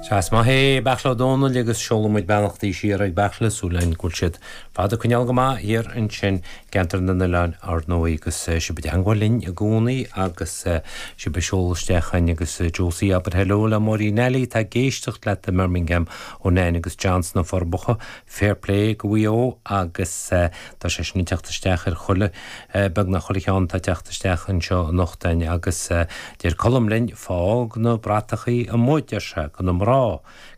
Sea, is maith é Beairtle Ó Domhnaill agus seolann muid beannachtaí siar ag Beairtle, súil againn go bhfuil siad ar fad ag coinneáil go maith thiar ansin i gCeantar na nOileáin ar ndóigh agus sibh i dteangmháil linn i gcónaí agus sibh ag seoladh isteach againn agus Josie abair heileo le Máirín Eilí atá ag éisteacht leat i mBirmingham ó Nain agus John sna Forbacha. Fair play go Mhaigh Eo agus tá sé sin ag teacht isteach ar chuile, beagnach chuile cheann atá ag teacht isteach anseo anocht againn agus deir Colm linn, fág na bratachaí amuigh, deir sé, go na mná.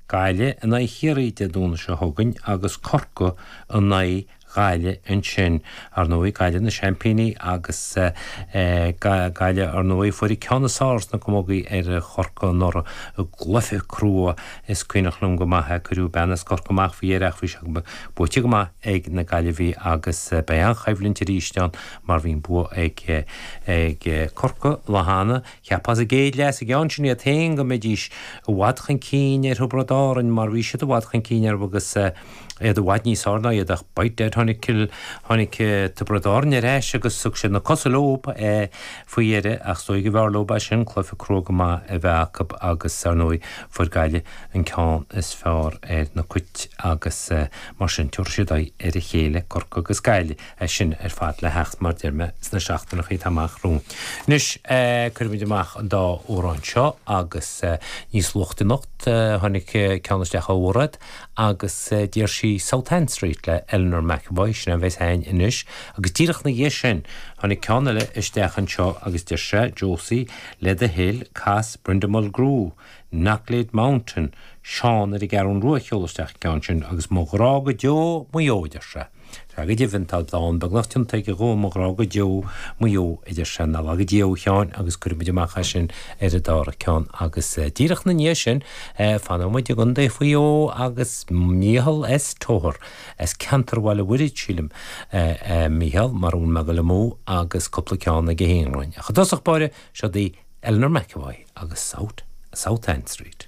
Gaillimh in aghaidh Chiarraí Dé Domhnaigh seo chugainn agus Corcaigh in aghaidh Ghaillimh ansin. Ar ndóigh, Gaillimh na seaimpíní agus Gaillimh, ar ndóigh, fuair an ceann is fearr sna camógaí ar Chorcaigh anuraidh i gcluiche crua. Is cuimhneach liom go maith, cuireadh bean as Corcaigh amach faoi dheireadh ach bhí sé buaite go maith ag na Gaillimhigh agus beidh an-choimhlint arís ann mar bhí an bua ag Corcaigh an lá cheana. Cheapfá sa gcéad leath sa gceann sin iad féin go mbeidís i bhfad chun cinn ar Thiobraid Árann mar bhí siad i bhfad chun cinn orthu agus iad i bhfad níos fearr ná iad ach by dad tháinig Cill tháinig Tiobraid Árann ar ais agus thug siad na cosa leo faoi dheireadh ach is dóigh go mb'fhearr leo sin cluiche crua go maith a bheith acu agus ar ndóigh fuair Gaillimh an ceann is fearr ar na cait agus mar sin tabharfaidh siad aghaidh ar a chéile Corcaigh agus Gaillimh é sin ar fad le theacht mar deir mé sna seachtaineacha atá amach romhainn anois cuirfimid amach an dá amhrán seo agus níos luaithe anocht tháinig ceann isteach ó Mhairéad agus d'iarr sí South Anne Street le Eleanor McEvoy, sin é a bheas a'inn anois, agus díreach 'na dhiaidh sin tháinig ceann eile isteach anseo agus deir sé Josie le do thoil, cas Brenda Mulgrew, Knocklayde Mountain, Seán ar an gCeathrún Rua a sheol isteach an ceann sin, agus Mo Ghrá go Deo Maigh Eo, a deir sé. Tá go deimhin, tá dán beagnach déanta aige dhom, Mo Ghrá go Deo, Maigh Eo, a deir sé. Nár laga Dia thú, a Sheáin agus cuirfidh muid amach é sin ar an dara ceann agus díreach ina ndiaidh sin fanfaidh muid i gContae Mhaigh Eo agus Michael S. Togher, as ceantar Bhéal an Mhuirthid, sílim, Michael, mara bhfuil mé ag dul amú, agus cúpla ceann ag a híonghlainn. Ach i dtosach báire, seo daoibh Eleanor McEvoy agus South South Anne Street.